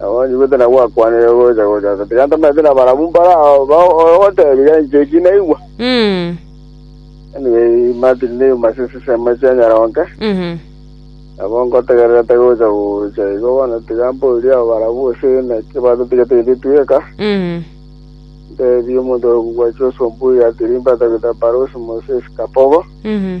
Abonye gose na gwakwanire gocha gocha ase, tiga ntamanyete na barabwo mbare ao ba- ogotebiga enchwa eki naigwa. Mm. Anyway, Martin ne yuma ase esesemo esia nyaroke, Mhm. nabo ngotegererete gocha gocha igo bono tiga mborie abo barabwo gose naki batotigete intwe tweka. Mhm. Ntebie omonto ore kobua Joshua Mbuya, Tirimba, Tabitha Barosi, Moses Kapogo, Mhm.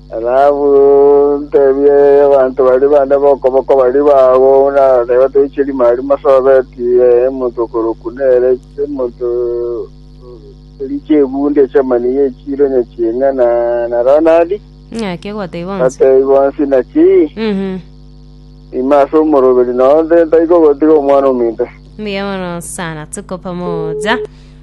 Rahabu, nteebie abanto baria bande b'okoboko baria bao, buna nateebete Ishiri Maari Mosobeti, omonto okorokwa nere, chimonto chiria chi'ebundi echi'amaniya echiire onye ching'ana, na Ronadi, Ng'aki ogotebia bonsi. bateebie bonsi naki Mhm. ime ase omoroberi, na onde ntari kogotiga omwana ominto. Mbuya mono sana, tuko pamoja.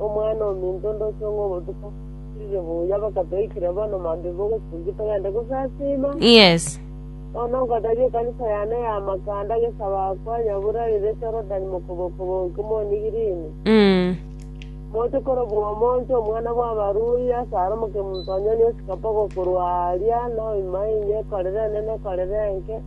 Omwana-o-minto, ndochie ng'a obotuko bwire buya bakatoikire bono mambia bogochungi togende gosasima. Yes. Bono nkotebia ekanisa yane ya Makanda gesabaakwa nyabura rire Jorodani mokobokobo inki moni girini. Mm. Mochokoro bw'omonto, omwana bw'abarui, asare omoke-munto onye niosikapogwo korwa aaria, na oimae inye, korera enene, korera enke.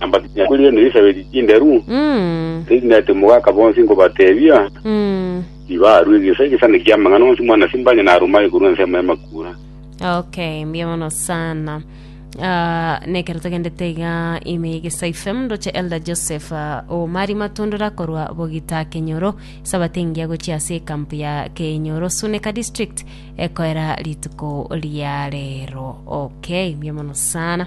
na mbakinya kwe riana risabeti chinderu, Mm. ase erina ete mogaka bonsi nkobatebia, Mm. tibarue egesa egesane ki'amang'ana onsi mwana simbanye naruma ekorwa ensemo y'amakura. okay mbuya mono sana Ah, nekero togendete iga ime ya egesayi fm ndoche elder joseph ah, omari matundura korwa bogita kenyoro sabate engiya gochia ase ekampu ya kenyoro suneka district ekoera rituko ria rero okay mbuya mono sana